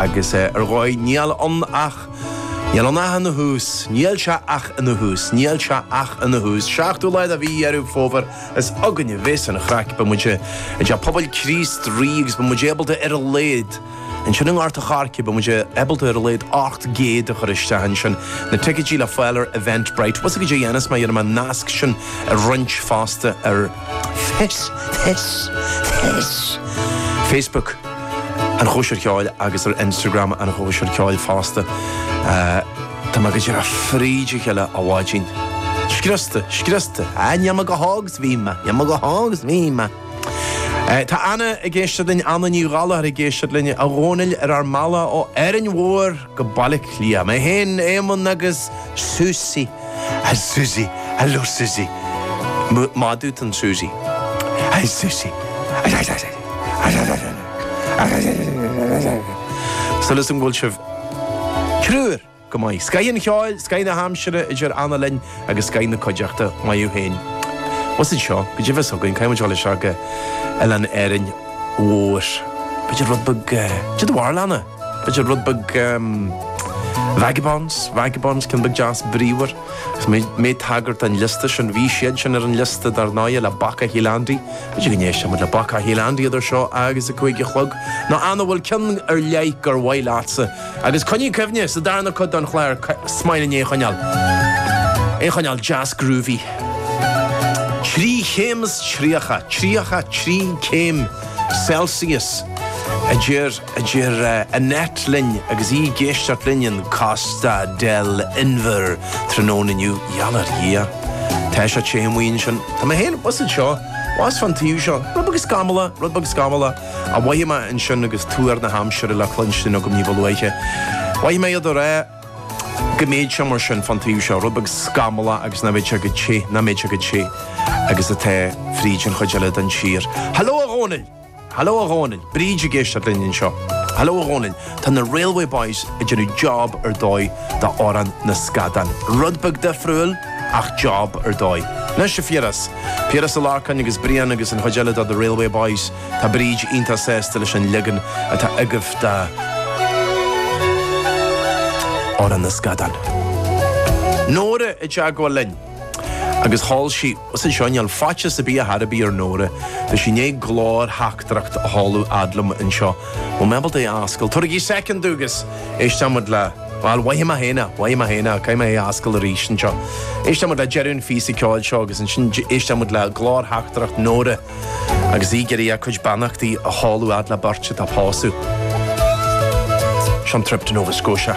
Agus ar dhóigh, níl ann ach. Níl ann ach ina thús. Níl sé ach ina thús. Níl sé ach ina thús. Seachtú lá de mhí Dheireadh Fómhair, is againn a bheas an chraic. Beidh muid i dTeach Pobail Chríost Rí agus beidh muid ábalta ar a laghad, ansin i nGort an Choirce, beidh muid ábalta ar a laghad 800 a chur isteach ansin. Na ticeidí le fáil ar Eventbrite. Bhfuil 'fhios a'd cad é a dhéanfas mé, dhéanfaidh mé an nasc sin a roinnt fosta ar Face. Face. Face. Facebook. an chóisir cheoil agus ar Instagram an chóisir cheoil fosta. Tá mé go díreach fríd a chéile a bháidín. Scriosta, scriosta. Ah, níl mé chomh hóg is a bhí mé, níl mé chomh hóg is a bhí mé. Tá Anna ag éisteacht linn, Anna Ní Ghallachair ag éisteacht linn, a Dhónaill, ar ár mbealach ó Árainn Mhór. go Baile Átha Cliath. Mé féin, Éamonn agus Susie. Hi Susie. Hello Susie. Maith duit an Susie. Hi Susie. Súil agam go bhfuil sibh triúr go maith. Scoith an cheoil, scoith na haimsire a deir Anna linn agus scoith na cuideachta. Maith thú féin. Abhus anseo. Go deimhin s'againn, caithfidh muid dul isteach go oileán Árainn Mhór. B'fhéidir rud beag, cad a mhair Anna? B'fhéidir rud beag ehm. vagabonds, vagabonds, ceann beag deas bríomhar. Agus mé ag tagairt don liosta sin, bhí siad sin ar an liosta dar ndóigh le Bacach Shíol Andaí. B'fhéidir go n-éistfidh muid le Bacach Shíol Andaí idir seo agus a cúig a chlog, nó Anna, bhfuil ceann ar leith gur mhaith leatsa. Agus coinnigh cuimhne, sa darna cuid den chlár, is maith linn é a choinneáil. É a choinneáil deas groovy. Trí chéim is tríocha, tríocha trí céim Celsius a deir. a deir Annette linn agus í ag éisteacht linn in Costa del Inbhir tráthnóna inniu. Gheall ar Dhia! Tá sé te amuigh ansin. Tá mé féin abhus anseo, abhus fán taobh seo. Rud beag scamallach, rud beag scamallach a mhoithigh mé ansin agus tuar na haimsire le cluinstin agam níba luaithe. Mhoithigh mé iad ag rá go mbéidh sé mar sin fán taobh seo, rud beag scamallach agus nach mbéidh sé chomh te, nach mbéidh sé chomh te agus atá fríd an chuid eile den tír. Hello a Dhónaill! Haló a Dhónaill! Bríd ag éisteacht linn anseo. Haló a Dhónaill! Tá na Railway Boys ag déanamh job ar dóigh d'Amhrán na Scadán. Rud beag difriúil, ach job ar dóigh. Anois a Phiarais. Piaras Ó Lorcáin agus Brian agus an chuid eile de The Railway Boys. Tá Bríd iontach sásta leis an leagan atá agaibh d'Amhrán na Scadán. Nóra i dteagmháil linn. agus chuala sibh anseo i ngeall faitíos a bhí ar bith ar Nóra. Tá sí i ndiaidh glórtheachtaireacht a sheoladh fhad liom anseo. Bhfuil mé ábalta é a fhoscailt? Tabhairigí soicind agus éisteoimid le. bhuel, maith mé féin é, maith mé féin é, caithfidh mé é a fhoscailt arís anseo. Éisteoimid le deireadh an phíosa ceoil seo agus ansin éisteoimid le glórtheachtaireacht Nóra agus í ag iarraidh a cuid beannachtaí a sheoladh fhad le beirt atá ag pósadh. Seo an trip to Nova Scotia.